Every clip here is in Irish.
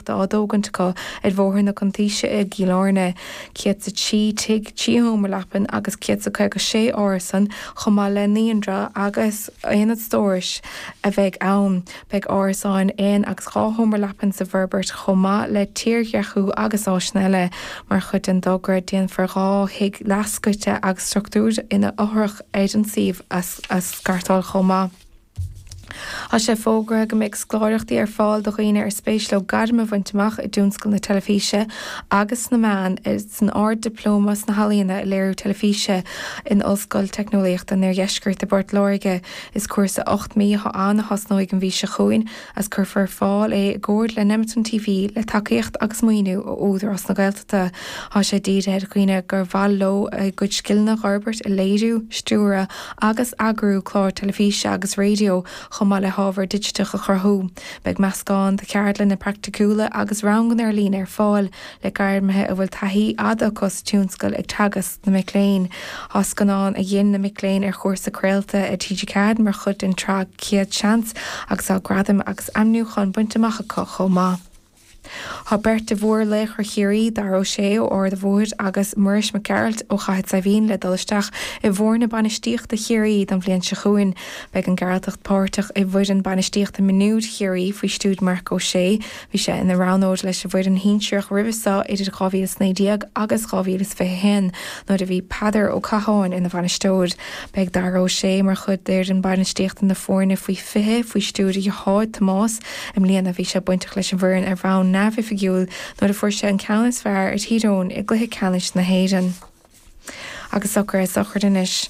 Tá á dtógaint acu ar Bhóthar na Cuntaoise i gCill Airne, 103 tigh, 3 sheomra leapan agus 156 árasan, chomh maith le naíonra agus aonad stórais a bheidh ann. Beidh árasáin aon agus dhá sheomra leapan sa bhforbairt chomh maith le tírdhreachú agus áiseanna eile. Mar chuid den dtogra déanfar dhá thigh leathscoite agus struchtúr ina fhothrach ar an suíomh a scartáil chomh maith. Tá sé fógartha go mbeidh scoláireachtaí ar fáil do dhaoine ar spéis leo gairm a bhaint amach i dtionscal na teilifíse agus sna meáin, san Ard-Dioplóma sna hEalaíona i Léiriú Teilifíse in Ollscoil Teicneolaíochta an Oirdheiscirt i bPort Láirge. Is cúrsa ocht mí atá ann a thosnóidh an mhí seo chugainn agus cuirfear ar fáil é i gcomhar le Nemeton TV le tacaíocht agus maoiniú ó Údarás na Tá sé dírithe ar dhaoine gur mhaith leo a gcuid scileanna a fhorbairt i léiriú, stiúradh agus eagrú clár teilifíse agus raidió, chomh maith le hábhar digiteach a chruthú. Beidh meascán de cheardlanna praiticiúla agus ranganna ar líne ar fáil, le gairmithe a bhfuil taithí fhada acu sa tionscal ag teagasc na mic léinn. Tá scannáin a dhein na mic léinn ar chúrsa craolta ar TG4 mar chuid den tsraith Céad Seans agus tá gradaim agus aimniúcháin bainte amach acu chomh maith. Tá beirt de mhórlaochra Chiarraí, Dara Ó Sé ó Ard a' Bhóthair agus Muiris Mac Gearailt ó Chathair Saidhbhín le dul isteach i bhfoirne bainistíochta Chiarraí don bhliain seo chugainn. Beidh an Gearaltach páirteach i bhfoireann bainistíochta mionúir Chiarraí faoi stiúir Marc Ó Sé. Bhí sé ina roghnóir leis an bhfoireann shinsearach roimhe seo idir 2019 agus 2021 nuair a bhí Peadar Ó Catháin ina bhainisteoir. Beidh Dara Ó Sé mar chuid d'fhoireann bainistíochta na foirne faoi 20 faoi stiúir Tomás. I mbliana, bhí sé bainteach leis an bhfoireann ar bhonn neamhoifigiúil nuair a fuaireadar an ceann is fearr ar Thír Eoghain i gcluiche ceannais na hÉireann. Agus socruithe sochraide anois.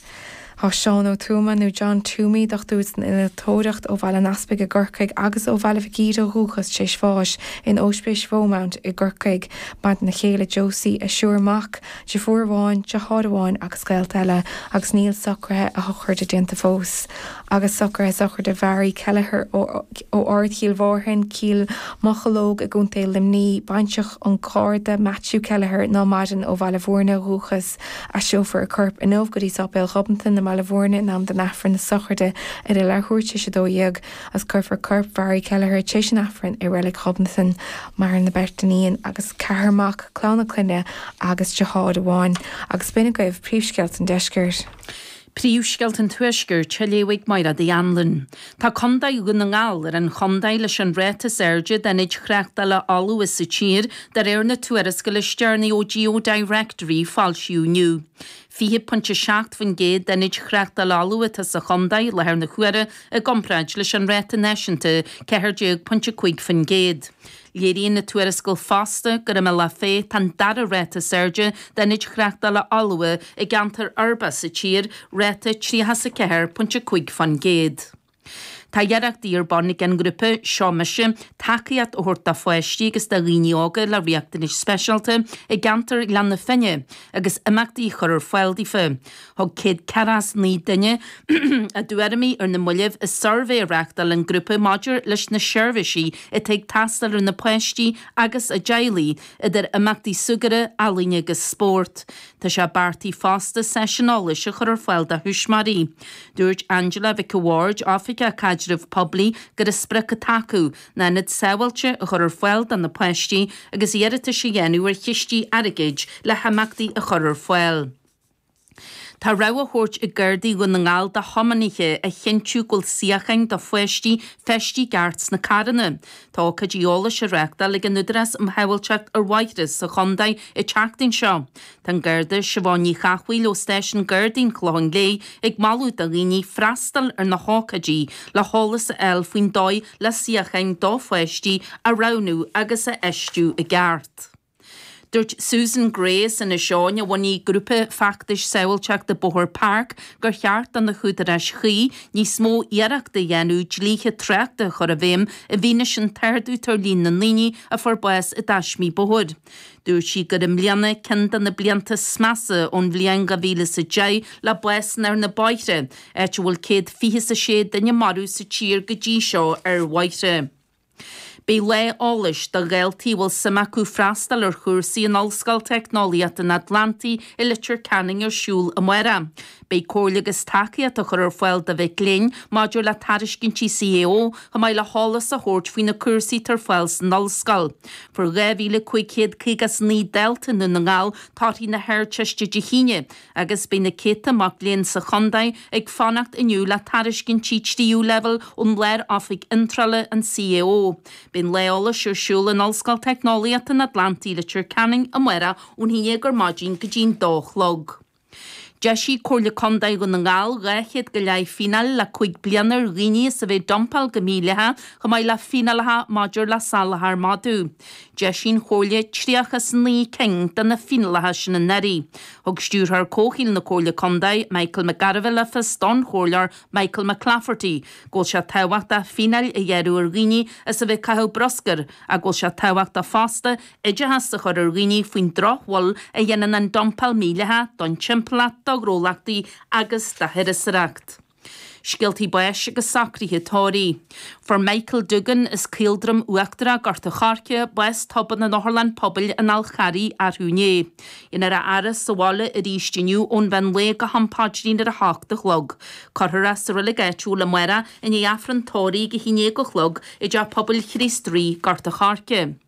Tá Seán Ó Tuama, nó John Toomey, dochtúir san innealtóireacht ó Bhaile an Easpaig i gCorcaigh agus ó Bhaile Mhic Íre ó dhúchas, tar éis bháis in Óispís Marymount i gCorcaigh. Maireann a chéile Josie, a thriúr mac, deirfiúr amháin, deartháir amháin agus gaolta eile, agus níl socruithe a shochraide déanta fós. agus socruithe sochraide Mhary Kelleher ó Ard Chill Mhárthain, Cill Mocheallóg i gContae Luimní, baintreach an Gharda Matthew Kelleher ná maireann ó Bhaile Mhúirne ó dhúchas. Aistreofar a corp inniu go dtí Sáipéal Ghobnatan i mBaile Mhúirne in am don Aifreann na sochraide ar a leathuair téis 12 agus cuirfear corp Mhary Kelleher téis an Aifrinn i Reilig Ghobnatan. Maireann a beirt iníon agus ceathrar mac, clann a clainne agus deartháir amháin. Agus b'in agaibh príomhscéalta an deiscirt. Príomhscéalta an Tuaiscirt á léamh ag Máire Uí Annluain. Tá contae Dhún na nGall ar an chontae leis an ráta is airde d'aonaid thráchtála fholmha sa tír, de réir na tuarascála is deireanaí ó Geodirectory, a foilsíodh inniu. 20.7% d'aonaid thráchtála fholmha atá sa chontae i láthair na huaire, i gcomparáid leis an ráta náisiúnta 14.5%. Léiríonn na tuarascáil fosta gur i mBealach Féich tá an dara ráta is airde d'ionaid chreachtála fholmha i gceantair uirbeach sa tír, ráta 34.5 faoin gcéad. Tá iarrachtaí ar bun ag an ngrúpa Seo Mise tacaíocht a thabhairt do pháistí agus do dhaoine óga le riachtanais speisialta i gceantar Ghleann na Finne agus imeachtaí a chur ar fáil daofa. Thug 149 duine a dtuairimí ar na mallaibh i suirbhé a reáchtáil an grúpa maidir leis na seirbhísí atá ag teastáil ar na páistí agus a dteaghlaigh, idir imeachtaí súgartha, ealaíne agus spórt. Tá sé beartaithe fosta seisiún eolais a chur ar fáil do thuismitheoirí. Dúirt Angela Mhic an Bhaird, Oifigeach Caidrimh Poiblí, gurb í an sprioc atá acu ná ionad sábháilte a chur ar fáil do na páistí agus iarratais a dhéanamh ar chistí airgid le himeachtaí a chur ar fáil. Tá rabhadh á thabhairt ag Gardaí Dhún na nGall do thiomanaithe a chinntiú go bhfuil suíocháin do pháistí, feistithe i gceart, sna carranna. Tá ócáidí eolais á reáchtáil ag an Údarás um Shábháilteacht ar Bhóithre sa chontae an tseachtain seo. Tá an Garda Siobhán Ní Chathmhaoil ó Stáisiún Gardaí an Chlocháin Léith ag moladh do dhaoine freastal ar na hócáidí le heolas a fháil faoin dóigh le suíocháin do pháistí a roghnú agus a fheistiú i gceart. Dúirt Susan Gray as Inis Eoghain, a bhunaigh grúpa feachtais sábháilteachta bóthair PARC, gur cheart do na húdaráis chuí níos mó iarrachta a dhéanamh dlíthe tráchta a chur i bhfeidhm i bhfianaise an t-ardú tar líon na ndaoine a fuair bás i dtaismí bóthair. Dúirt sí gur i mbliana ceann de na blianta is measa ón bhliain 2000 is a sé déag le básanna ar na bóithre, áit a bhfuil céad fiche is a sé duine maraithe sa tír go dtí seo ar bhóithre. Beidh Lá Eolais do dhaltaí a bhfuil suim acu freastal ar chúrsaí in Ollscoil Teicneolaíochta an Atlantaigh i Leitir Ceanainn ar siúl amárach. Beidh comhairle agus tacaíocht á chur ar fáil do mhic léinn maidir le tairiscintí CAO chomh maith le heolas a thabhairt faoi na cúrsaí atá ar fáil san ollscoil. Fuair 2,559 dalta i nDún na nGall torthaí na hArdteiste Dé hAoine. Agus beidh na céadta mac léinn sa chontae ag fanacht inniu le tairiscintí tríú leibhéal ón Lár-Oifig Iontrála, an CAO. Beidh an Lá Eolais ar siúl in Ollscoil Teicneolaíochta an Atlantaigh, Leitir Ceanainn, amárach ón 11 ar maidin go dtí an 2 a chlog. D'eisigh Comhairle Contae Dhún na nGall 200 go leith fíneáil le cúig bliana ar dhaoine as a bheith ag dumpáil go mídhleathach, chomh maith le fíneálacha maidir le salachar madadh. D'eisigh an Chomhairle 39 cinn de na fíneálacha sin anuraidh. Thug Stiúrthóir Comhshaoil na Comhairle Contae, Michael McGarvey le fios don Chomhairleoir Michael McClafferty go bhfuil sé tábhachtach fíneáil a ghearradh ar dhaoine as a bheith ag caitheamh bruscair ach go bhfuil sé tábhachtach fosta oideachas a chur ar dhaoine faoin drochbhail a dhéanann an dumpáil mhídhleathach don timpeallacht do ghnólachtaí agus do thurasóireacht. Scéaltaí báis agus socruithe tórraimh. Fuair Michael Dougan as Caoldroim Uachtarach, Gort an Choirce, bás tobann in otharlann pobail an Fháil Charraigh arú inné. Déanfar a fhaire sa bhaile arís inniu ón mheán lae go ham paidrín ar a hocht a chlog. Cuirfear é sa reilig áitiúil amárach i ndiaidh Aifreann tórraimh a haon déag a chlog i dTeach Pobail Chríost Rí, Gort an Choirce.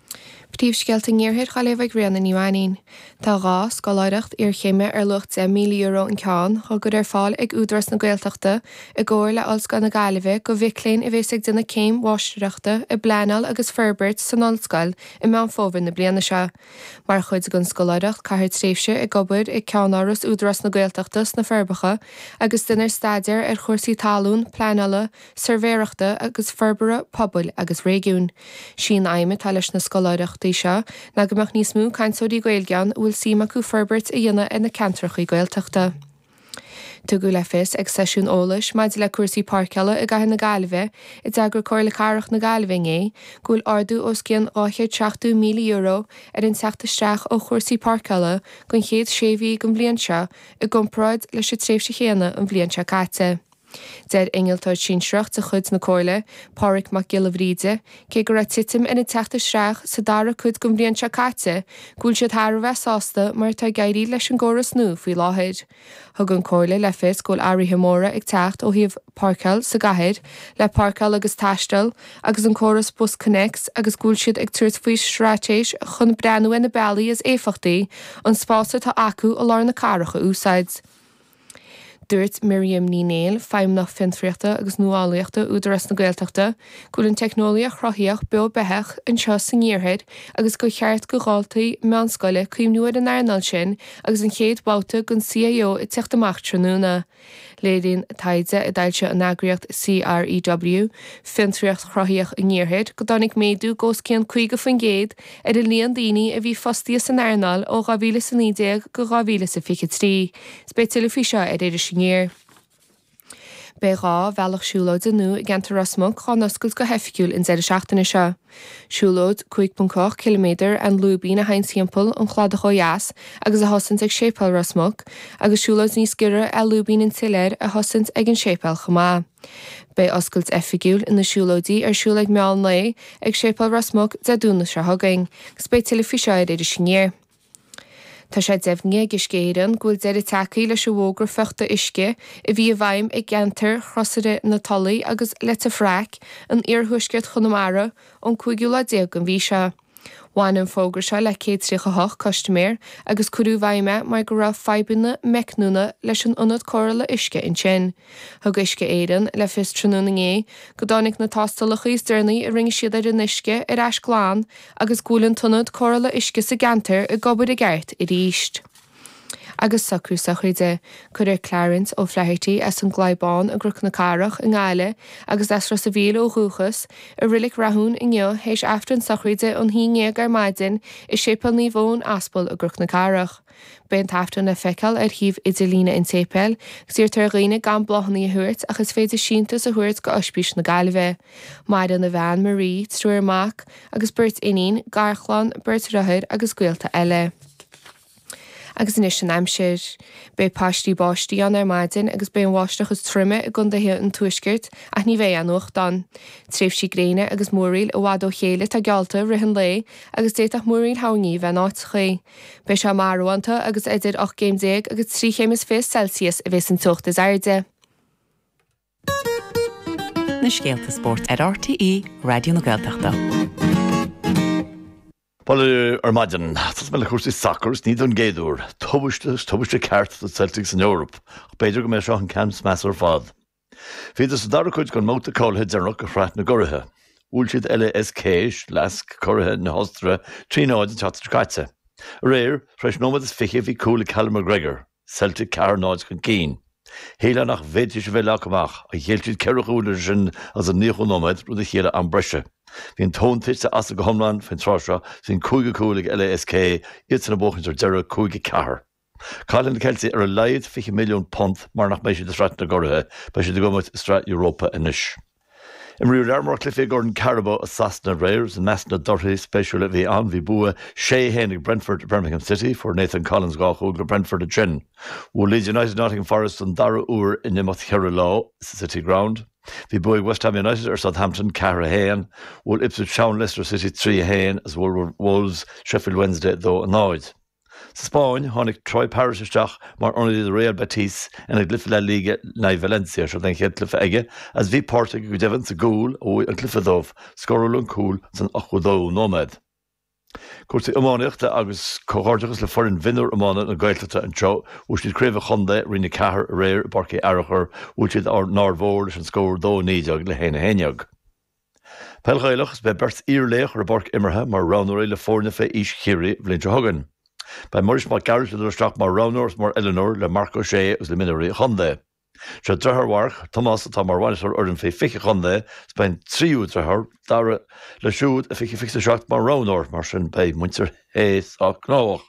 Príomhscéalta an iarthair dhaoibh ag Ríona Ní Mhainín. Tá dhá scoláireacht iarchéime ar luach €10,000 an ceann, dhá gcur ar fáil ag Údarás na Gaeltachta i gcomhar le Ollscoil na Gaillimhe go mhic léinn a bhéas ag déanamh céim mháistireachta i bpleanáil agus forbairt san ollscoil i Meán Fómhair na bliana seo. Mar chuid den scoláireacht caithfear tréimhse ag obair ag ceann-áras Údarás na Gaeltachta sna Forbacha agus déanfar staidéar ar chúrsaí talún, pleanála, suirbhéireachta agus forbartha pobail agus réigiúin. Sí an aidhm atá leis na scoláireachtaí seo ná go mbeadh níos mó cainteoirí Gaeilge ann a bhfuil suim acu forbairt a dhéanamh ar na ceantrachaí Gaeltachta. Tugadh le fios ag seisiún eolais maidir le cúrsaí páirceála i gCathair na Gaillimhe a d'eagraigh Comhairle Cathrach na Gaillimhe inné go bhfuil ardú os cionn €270,000 ar an teacht isteach ó chúrsaí páirceála don chéad sé mhí den bhliain seo i gcomparáid leis an tréimhse chéanna an bhliain seo caite. Deir innealtóir sinsearach de chuid na Comhairle, Pádraig Mac Giolla Bhríde, cé go raibh titim ar an teacht isteach sa dara cuid den bhliain seo caite, go bhfuil siad thar a bheith sásta mar atá ag éirí leis an gcóras nua faoi láthair. Thug an Comhairle le fios go bhfuil athruithe móra ag teacht ó thaobh páirceáil sa gcathair, le Páirceáil agus Taisteal agus an córas BusConnects agus go bhfuil siad ag tabhairt faoi straitéis chun breathnú ar na bealaí is éifeachtaí an spás atá acu i lár na cathrach a úsáid. Dúirt Miriam Ní Néill, Feidhmeannach Fiontraíochta agus Nuálaíochta Údarás na Gaeltachta, go bhfuil an teicneolaíocht chruthaíoch beo beathach anseo san iarthar agus gur cheart go dhaltaí meánscoile cuimhniú ar an earnáil sin agus an chéad bhabhta den CAO ag teacht amach tráthnóna. Léiríonn taighde a d'fhoilsigh an eagraíocht CREW, Fiontraíocht Chruthaíoch an Iarthair, go dtáinig méadú go os cionn 50% ar an líon daoine a bhí fostaithe san earnáil ó 2019 go 2023, is beidh tuilleadh faoi seo ar Iris Aniar. Beidh dhá bhealach siúlóide nua i gceantar Ros Muc dhá n-oscailt go hoifigiúil an deireadh seachtaine seo. Siúlóid 5.8 km 'An Lúibín' a théann thimpeall an chladaigh ó dheas agus a thosaíonn ag Séipéal Ros Muc, agus siúlóid níos giorra 'Lúibín an tSiléir' a thosaíonn ag an séipéal chomh maith. Beidh oscailt oifigiúil na siúlóidí ar siúl ag meán lae ag Séipéal Ros Muc Dé Domhnaigh seo chugainn agus beidh tuilleadh faoi seo ar Iris Aniar. Tá sé deimhnithe ag Uisce Éireann go bhfuil deireadh tagtha leis an bhfógra fiuchta uisce a bhí i bhfeidhm i gceantar Chrosaire na Tulaí agus Leitir Fraic in iarthuaisceart Chonamara ón 5ú lá déag den mhí seo. Bhain an fógra seo le 138 custaiméir agus cuireadh i bhfeidhm é mar go raibh fadhbanna meicniúla leis an ionad cóireála uisce ansin. Thug Uisce Éireann le fios tráthnóna inné go dtáinig na tástálacha is deireanaí a rinne siad ar an uisce ar ais glan agus go bhfuil an t-ionad cóireála uisce sa gceantar ag obair i gceart aríst. Agus socrú sochraide. Cuirfear Clarence O'Flaherty, as an gClaí Bán i gCnoc na Cathrach i nGaillimh agus as Ros a' Mhíl ó dhúchas, i Reilig Rathúin inniu théis Aifreann sochraide an haon ndéag ar maidin i Séipéal Naomh Eoin Aspal i gCnoc na Cathrach. Beidh an tAifreann le feiceáil ar shuíomh idirlíne an tséipéil agus iarrtar ar dhaoine gan bláthannaí a thabhairt ach is féidir síntiús a thabhairt go Oispís na Gaillimhe. Maireann a bhean, Marie, triúr mac agus beirt iníon, garchlann, beirt dhriothár agus gaolta eile. Agus anois an aimsir. Beidh paistí báistí ann ar maidin agus beidh an bháisteach is troime i gcondaetha an Tuaiscirt ach ní bheidh aon fhuacht ann. Tréimhsí gréine agus múraíl i bhfad ó chéile atá geallta i rith an lae agus d'fhéadfadh múraíl thoirní a bheith in áiteachaí. Beidh sé marbhánta agus idir ocht gcéim déag agus trí chéim is fiche Celsius a bhéas an teocht is airde. na scéalta spóirt ar RTÉ Raidió na Gaeltachta. Bhuel, ar maidin, tosóidh mé le cúrsaí sacair, is ní don gcéad uair. Tubaiste, is tubaiste ceart do Celtic san Eoraip, ach b'fhéidir go mb'é seo an ceann is measa ar fad. Bhíodar sa dara cuid den mbabhta cáilithe deireanach de Shraith na gCuraithe. Bhuail siad LASK, Lask, curaithe na hOstaire, trí náid an tseachtain seo caite. Aréir, tar éis nóiméad is fiche, bhí cúl ag Callum McGregor. Celtic ceathair náid chun cinn. Shílfeá nach bhféadfaidís a bheith leagtha amach, ach ghéill siad ceithre chúl idir sin agus an nóchadú nóiméad, rud a chiallaigh am breise. Bhí an tóin tite astu go hiomlán faoin tráth seo, is an cúigiú cúl ag LASK iadsan ag buachaint ar deireadh, cúig a ceathair. Caillfidh na Ceiltigh ar a laghad £20 milliún mar nach mbeidh siad i Sraith na gCuraithe, beidh siad ag imirt i Sraith Europa anois. Imríodh lear mór cluichí i gCorn Carabao i Sasana aréir agus i measc na dtorthaí spéisiúla a bhí ann bhí bua sé haon ag Brentford ar Birmingham City, fuair Nathan Collins dhá chúl do Brentford ansin. Bhuail Leeds United Nottingham Forest don dara huair in imeacht cheithre lá sa City Ground. Bhí bua ag West Ham United ar Southampton ceathair a haon, bhuail Ipswich Town Leicester City trí a haon agus bhuail Wolves Sheffield Wednesday dó a náid. Sa Spáinn, tháinig Troy Parrott isteach mar ionadaí do Real Betis ina gcluiche La Liga, in aghaidh Valencia, seod é an chéad cluiche aige agus bhí páirt aige go deimhin sa gcúl a bhuaigh an cluiche dóibh, scóráladh an cúl san 82ú nóiméad. Cúrsaí iománaíochta agus comhghairdeachas le foireann mhionúr iomána na Gaeltachta anseo, bhuaigh siad Craobh an Chontae, Roinn 4, aréir i bPáirc Uí Fhearachair, bhuail siad an Aird Mhór leis an scór 2 19 le 1 11. Peil Ghaelach 's beidh beirt iar-laoch ar pháirc imeartha mar roghnóirí le foirne fé aois Chiarraí an bhliain seo chugainn. Beidh Muiris Mac Gearailt ag dul isteach mar roghnóir is mar oiliúnóir le Marc Ó Sé agus le mionúirí an chontae. Sé driotháir Mharc, Tomás atá mar bhainisteoir fhoireann fé 20 an chontae is beidh an tríú driotháir, Darragh, leis siúd fé 2027 mar roghnóir. Mar sin beidh muintir. Uí Shé gnóthach.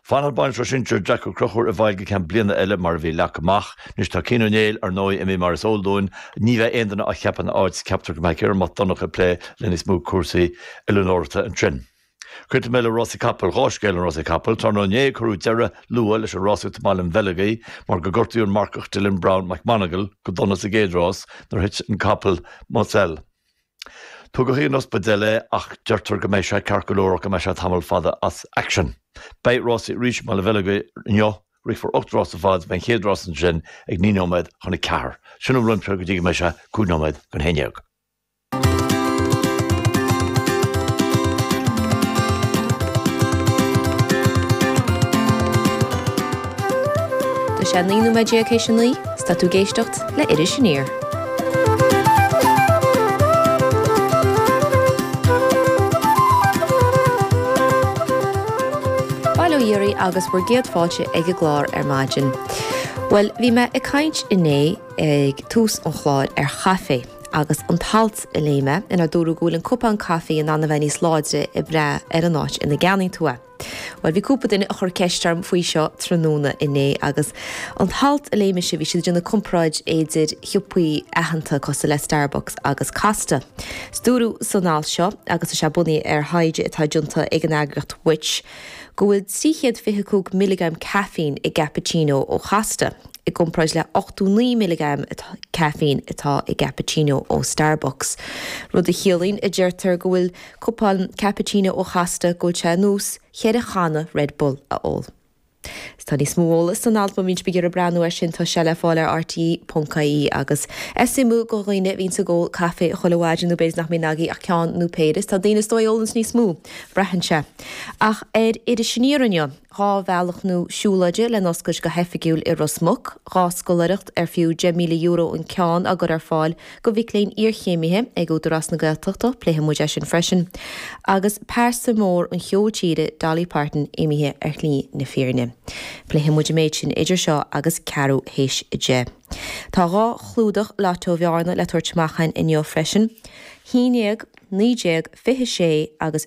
Fanfaidh bainisteoir sinsir Jack Ó Crochúr i bhfeighil go ceann bliana eile mar a bhí leagtha amach. Anois tá Cian Ó Néill, ar ndóigh, imithe mar is eol dúinn. Ní bheidh aon duine á cheapadh ina áit is ceaptar go mbeidh Ciarán Mac Donnacha ag plé le níos mó cúrsaí oiliúnóireachta ansin. Críochnóidh mé le rásaí capall, dhá scéal ann rásaí capall. Tráthnóna inné cuireadh deireadh luath leis an rásaíocht i mBaile an Bheileogaigh mar gur gortaíodh an marcach Dylan Browne McMonagle go dona sa gcéad rás nuair a thit an capall Moselle. Tugadh chun an ospidéil é ach deirtear go mbeidh sé ceart go leor ach go mbeidh sé tamall fada as aicsean. Beidh rásaí arís i mBaile an Bheileogaigh inniu, rithfear ocht rás ar fad beidh an chéad rás ansin ag naoi nóiméad chun a ceathair. Sin an spórt go dtí go mbeidh sé cúig nóiméad don haon déag. Tá sé naoi nóiméad déag théis a naoi. Tá tú ag éisteacht le Iris Aniar. Bail ó Dhia oraibh agus bhur gcéad fáilte ag an gclár ar maidin. Bhuel, bhí mé ag caint inné ag tús an chláir ar chaifé agus an t-alt a léigh mé inar dúradh go bhfuil an cupán caifé in ann a bheith níos láidre ag brath ar an áit ina gceannaíonn tú é. Bhuel, bhí cúpla duine a chur ceist orm faoi seo tráthnóna inné, agus an t-alt a léigh mise, bhí siad ag déanamh comparáid idir shiopaí aitheanta cosúil le Starbucks agus Costa. 'S dúradh san alt seo, agus is é bunaithe ar thaighde atá déanta ag an eagraíocht Which. go bhfuil trí chéad fiche cúig milleagram caffeine i gcappuccino ó Chosta, i gcomparáid le ochtó naoi milleagram caffeine atá i gcappuccino ó Starbucks. Rud a chiallaíonn, a deirtear, go bhfuil cupán cappuccino ó Chosta go bhfuil sé ar nós cheithre channa Red Bull a ól. Tá níos mó eolas san alt má bhíonn sibh ag iarraidh breathnú air sin, tá sé le fáil ar rte.ie. Agus é suimiúil go dhaoine a bhíonns ag ól caifé chuile mhaidin, nó b'fhéidir nach mbíonn agaibh ach ceann nó péire, is tá daoine is dóigh a ólanns níos mó, braitheann sé. Ach ar Iris Aniar inniu. dhá bhealach nó siúlóide le n-oscailt go hoifigiúil i Ros Muc, dhá scoláireacht ar fiú €10,000 an ceann á gcur ar fáil go mhic léinn iarchéimithe ag Údarás na Gaeltachta, pléifidh muid é sin freisin, agus pearsa mór an cheoil tíre, Dolly Parton, imithe ar shlí na fírinne. Pléifidh muid an méid sin idir seo agus ceathrú théis a deich. Tá dhá chlúdach Lotto Bhearna le tabhairt amach againn inniu freisin, haon déag, naoi déag, fiche sé agus.